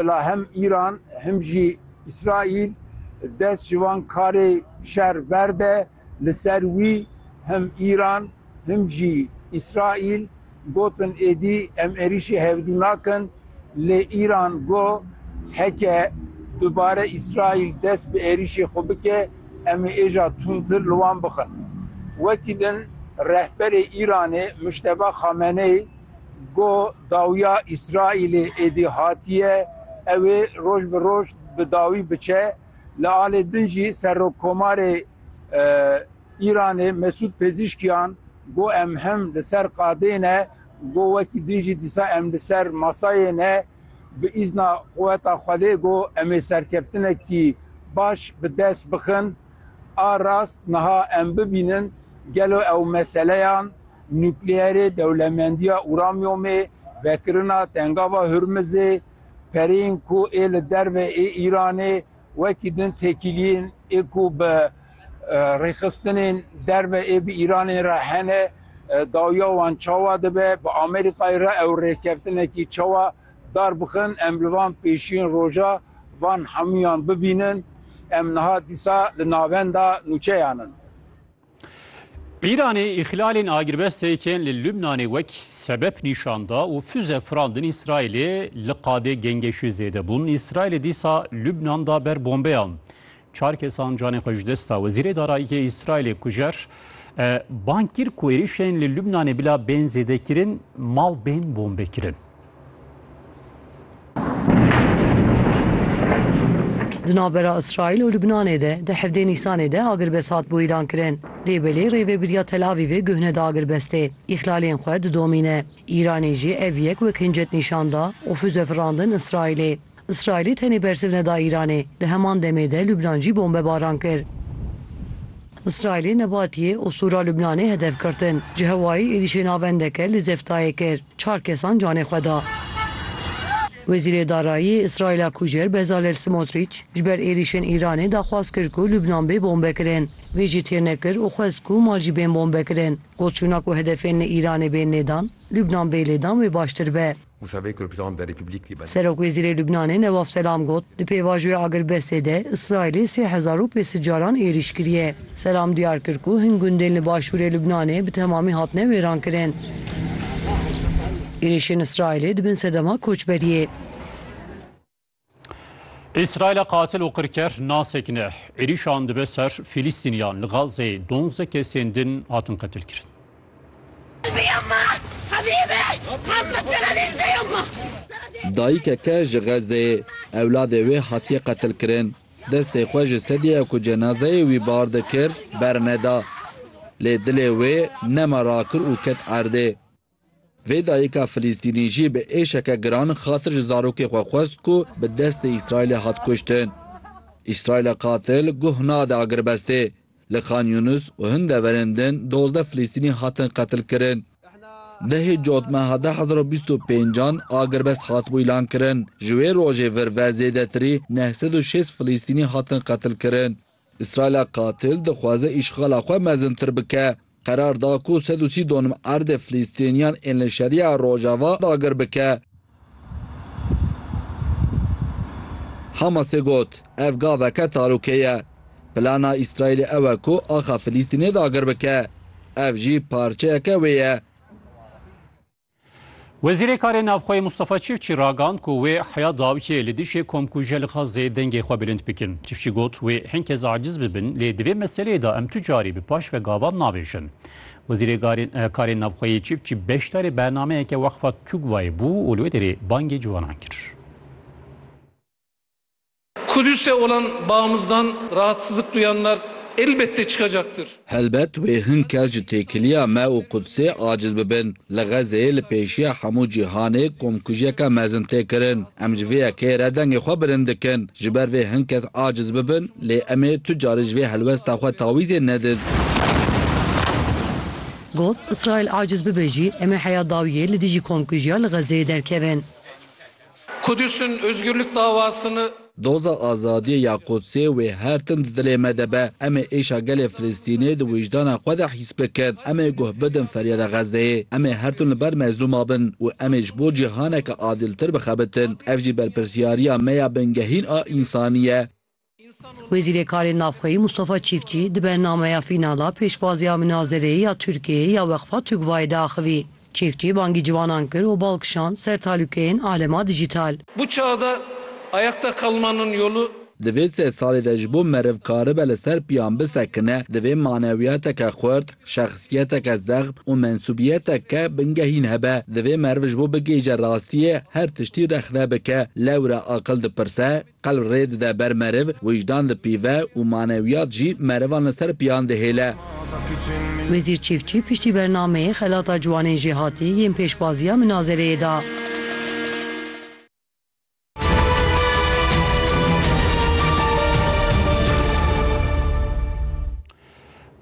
Bila him Îran him jî Îsraîl dest ji van karê şer berde. Li ser wî him Îran him jî Îsraîl gotin êdî em êrîşê hevdû nakin. Lê Îran got heke dubare Îsraîl dest bi êrîşê xwe bike em ê êja tundtir li wan bixin. Wekî din rehberê Îranê Mujteba Xameneî, Got, Dawiya Îsraîlê êdî hatiye, ew ê roj bi roj bi dawî biçe. Li alê din jî Serokkomarê Îranê Mesûd Pezîşkiyan got, Em him li ser qadê ne, got wekî din jî dîsa em li ser masayê ne. Bi îzna quweta Xwedê got, em ê serkeftinekî baş bi dest bixin. A rast niha em bibînin gelo ew meseleyan, nukleerê, dewlemendiya uramyomê, vekirina Tengava Hurmizê, pereyên ku ê li derve ê Îranê wekî din tekîliyên ê ku bi rêxistinên derve ê bi Îranê re hene, dawiya wan çawa dibe, bi Amerîkayê re ew rêkevtinekî çawa Dar bixin em li van pêşiyên roja van hemûyan bibînin. Em niha dîsa li navenda nûçeyan in. Îranê îxlalên agirbestê yên li Lubnanê wek sebep nîşan da û füze firandin Îsraîlê, li qadê gengeşî zêde bûn. Îsraîlê dîsa Lubnan da ber bombeyan. Çar kesan canê xwe ji dest da. Wezîrê Darayîyê Îsraîlê kujer bang kir ku êrîşên li Lubnanê bila bên zêdekirin, mal bên bombekirin. Di navbera Îsraîl û Lubnanê de di hevdê Nîsanê de agirbest hat bûîran kirin. Lê belê rêvebiriya Tel Avîvê guh neda agirbestê, îhlalên xwe didomîne. Îranê jî ev yek wek hincet nîşan da û füze firandin Îsraîlê. Îsraîlê tenê bersiv neda Îranê, di heman demê de Lubnan jî bombebaran kir. Îsraîlê Nebatiyê û Sûra Lubnanê hedef girtin. Ji hewayê êrîşê navendeke li Zeftayê kir, çar kesan canê xwe da. Wezîrê Darayî yê Îsraîla Kujer Bezalel Simotrîç ji ber êrîşên Îranê daxwaz kir ku Lubnan bê bombekirin. Vê jî têr nekir û xwest ku mal jî bên bombekirin. Got çûna ku hedefên li Îranê bên lêdan, Lubnan bê lêdan wê baştir be. Serokwezîrê Lubnanê Newaf Selam got, Di pêvajoya agirbestê de Îsraîlê sê hezar û pênc sed caran êrîş kiriye. Selam diyar kir ku hin gundên li başûrê Lubnanê bi temamî hatine wêrankirin. Êrîşên Îsraîlê di bin sedema koçberiyê. İsrail'e katil û qirker nasekine ne. Êrîşan dibe ser Fîlîstîniyan li Gazeyê donze kesên din hatin qetilkirin. Dayikeke ji Xezeyê ewladê wê hatiye qetilkirin. Destê xwe ji sedîya ku cenazeyê wî bar dikir berneda. Lê dilê wê nema rakir û ket erdê. Vê dayika Filîstînî jî bi êşeke giran xatir ji zarokê xwe xwest ku bi destê Îsraîlê hat kuştin. Îsraîla qatil guh nade agirbestê. Li Xan Yûnis û hin deverên din dozdeh Filîstînî hatin qetilkirin. Dehê cotmeha du hezar û bîst û pêncan agirbest hatibû îlankirin. Ji wê rojê vir ve zêdetirî neh sed û şêst Filîstînî hatin qetilkirin. Îsraîla qatil dixwaze îşxala xwe mezintir bike. Qerar da ku sed û sî donim erdê Filîstîniyan ên li Şeriya Rojava dagir bike. Hamasê got, Ev gaveke talûkê ye. Plana Îsraîlê ew e ku axa Filîstînê dagir bike. Ev jî parçeyeke wê ye. Wezîrê Karê Navxweyê Mustafa Çifçî ragand ku wê heya dawiyê li dijî komkuje li Xazzeyê dengê xwe bilind bikin. Çifçî got wê hin kes aciz bibin lê di vê meseleyê de em tu carî bi paş ve gavan nabêjin. Wezîrê Karê Navxweyê Çifçî beşdarê bernameyeke Weqfa TUGVAyê bû û li wê derê bangê ciwanan kir. Kudüs'te olan bağımızdan rahatsızlık duyanlar elbette çıkacaktır. Helbet wê hin kes ji têkiliya me û Kudsê aciz bibin. Li Xezeyê li pêşiya hemû cîhanê komkujiyeke mezin tê kirin. Em ji vê yekê re dengê xwe bilind dikin. Ji ber vê hin kes aciz bibin lê em ê tu carî ji vê helwesta xwe tawîzê nedin. Got, Îsraîl aciz bibe jî em ê heya dawiyê li dijî komkujiya li Xezeyê derkevin. Kudüs'in özgürlük davasını. Doza azadiyê ya Qudsê wê her tim di dilê me de be. Em ê êşa gelê Filistînê di wijdana xwe de hîs bikin. Em ê guh bidin feryada Xezzeyê. Em ê her tim li ber mezlûma bin û em ê ji bo cîhaneke adîltir bixebitin. Ev jî berpirsyariya me ya bingehîn a însanî ye. Wezîrê Karên Navxweyî Mustafa Çîftçî di bernameya fînala pêşbaziya minazereyê ya Tirkiyeyê ya Weqfa TUGVA'yê de axivî. Çîftçî bangî ciwanan kir û bal kişand ser talûkeyên alema dîjîtal. Bu çağda ayakta kalmanın yolu. Di vê sê salê de ji bo meriv karibe li ser piyan bisekine, divê manewiyateke xurt, şexsiyeteke zexm û mensûbiyeteke bingehîn hebe. Divê meriv ji bo bigihîje rastiyê her tiştî rexne bike. Lewre aqil dipirse. Qelb rê dide ber meriv, wijdan dipîve û manewiyat jî merivan li ser piyan dihêle. Wezîr Çîfçî piştî bernameyê xelata ciwanên jêhatî yên pêşbaziya minazereyê da.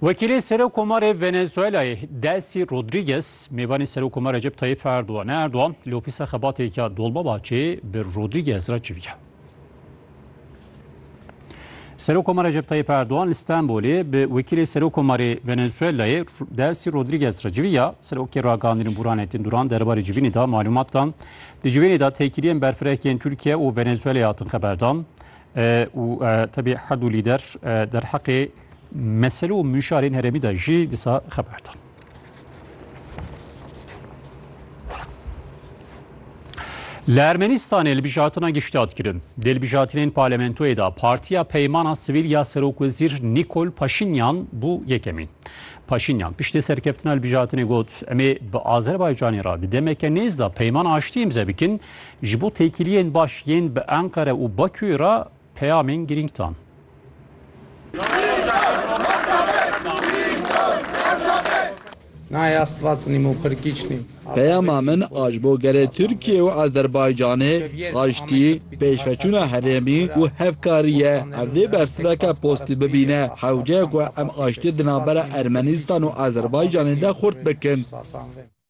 Wekîlê Serokkomarê Venezuelayê Delsî Rodrîges mêvanê Serokkoma Recep Tayîp Erdogan e. Erdogan li ofîsa xebatê ya Dolmabahçê bi Rodrîges re civiya. Serokkoma Recep Tayîp Erdogan li Stenbolê bi Wekîlê Serokkomarê Venezuelayê Delsî Rodrîges re civiya. Serokê Ragandîn û Burhanettin Duran derbarê civînê de malûmat dan. Di civînê de têkiliyên berfirehkên Tirkiye û Venezuelayê hatin xeberdan. û tevî herd û lîder derheqê mesele û mûşarên herêmî de jî disa xeber dan. Li Ermenistanê li bijatina giştat kirin. Dê li bijatinên parlamentoyê de Partiya Peymana Sivîl ya Serokwezîr Nîkol Paşinyan bû yekemîn. Paşinyan piştî serkeftina li bijatinê got, em ê bi Azerbaycanê re di demeke nêz de peyman aştî îmze bikin, Ji bo têkiliyên baş yên bi Enqere û Bakûyê re peyamên girîng dan. Peyama min a ji bo gelê Tirkiyê û Azerbaycanê, aştî, pêşveçûna herêmî û hevkarî ye. Ev dê bersiveke postî bibîne hewceyê ku em aştiyê di navbera Ermenistan û Azerbaycanê de xurt bikin.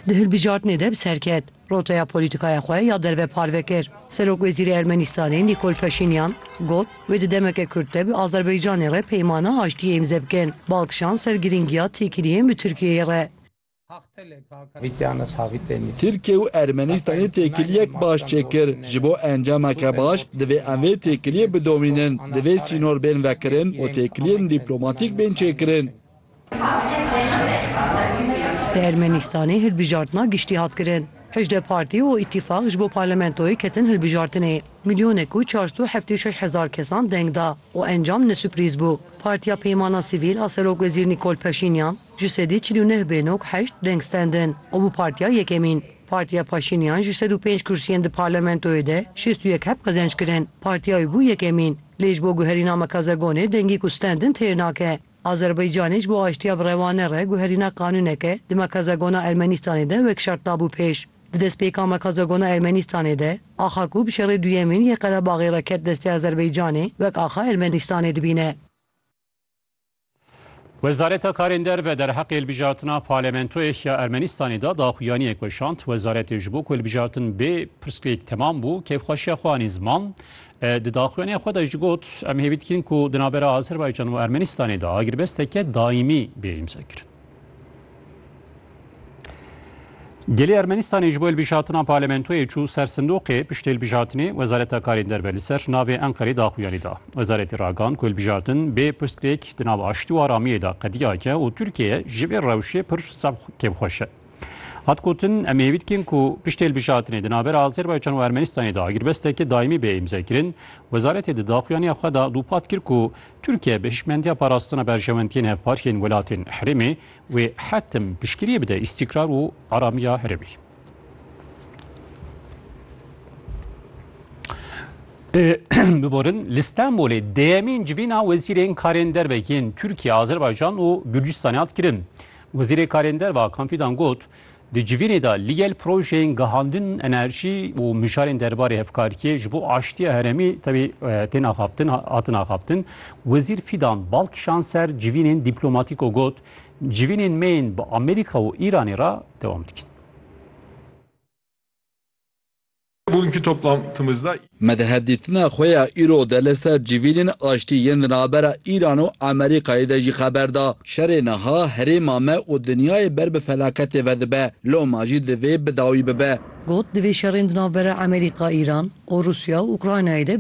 Di hilbijartinê de bi ser ket, roteya polîtîkaya xwe ya derve parve kir. Serokwezîrê Ermenîstanê Nîkol Paşînyan got, wê di demeke kurt de bi Azerbaycanê re peymana aştiyê îmze bikin. Bal kişand ser girîngiya têkiliyên bi Tirkiyeyê re. Tirkiye û Ermenîstanê têkiliyek baş çêkir. Ji bo encameke baş divê em vê têkiliyê bidomînin. Divê sînor bên vekirin û têkiliyên dîplomatîk bên çêkirin. Di Ermenistanê hilbijartina giştî hat kirin. Hejdeh partî û îtîfaq ji bo parlamentoyê ketin hilbijartinê. Milyonek û çar sed û heftê û şeş hezar kesan deng da û encam ne suprîz bû. Partiya Peymana Sivîl a Serokwezîr Nîkol Paşînyan ji sedî çil û neh bê nok heşt deng stendin û bû partiya yekemîn. Partiya Paşînyan ji sed û pênc kursiyên di parlamentoyê de şêst û yek heb qezenc kirin. Partiya wî bû yekemîn. Lê ji bo guherîna Makazegonê dengî ku stendin têr nake. Azerbaycanê ji bo aştiya bi rewane re guherîna qanûneke di Mekazagona Ermenîstanê de wek şert dabû pêş. Di destpêka Mekazagona Ermenîstanê de axa ku bi şerê duyemîn yê Qerebaxê re ket destê Azerbaycanê wek axa Ermenîstanê dibîne. Wezareta Karên Derve derheqê hilbijartina Parlamentoyê ya Ermenîstanê de daxuyaniyek weşand. Wezaretê ji bo ku hilbijartin bê pirsgirêk temam bû kêfxweşiya xwe anî ziman. Di daxuyanîya xwe de jî got, Em hêvî dikin ku di navbera Azerbaycan û Ermenîstanê de agirbesteke daîmî bê îmzekirin. Gelê Ermenîstanê ji bo hilbijartina parlamentoyê çû ser sindoqê piştê hilbijartinê Wezareta Karên Derve li ser navê Enqerê daxuyanî da. Wezaretê ragand ku hilbijartin bê pirsgirêk di nav aştî û aramiyê de qediyayeke û Tirkiye ji vê rewşê pir kevxweş e. Hat gotin em hêvî dikin ku piştê hilbijartinê di navbera Azerbaycan û Ermenistanê de agirbestekî daîmî bê îmzekirin. Wezaretê di daxuyaniya xwe de dûpat kir ku Tirkiye bi hişmendiya parastina berjewendiyên hevparkên welatên herêmê wê hetim piştgiriyê bide îstîkrar û aramiya herêmê. Biborin li Stenbolê dêyemîn civîna wezîrên karên dervekên Tirkiye, Azerbaycan û Gürcistanê hat kirin. Wezîrê Karên Derve Hakan Fîdan got, Di civînê de li gel projeyên gihandin enerjî û mijarên derbarê hevkariyê ji bo aştiya herêmî tevî tên axaftin hatin axaftin. Wezîr Fîdan bal kişand ser civînên dîplomatîk û got, Civînên me yên bi Amerîka û Îranê re dewam dikin. Bugünkü toplantımızda. Me di hevdîtina xwe ya îro de li ser civînên aştî yên di navbera Îran û Amerîkayê de jî xeber da. Şerê niha herêma me û dinyayê ber bi felaketê ve dibe, loma jî divê bi dawî bibe. Got, Divê şerên di navbera Amerîka, Îran û Rûsya û Ukraynayê de bi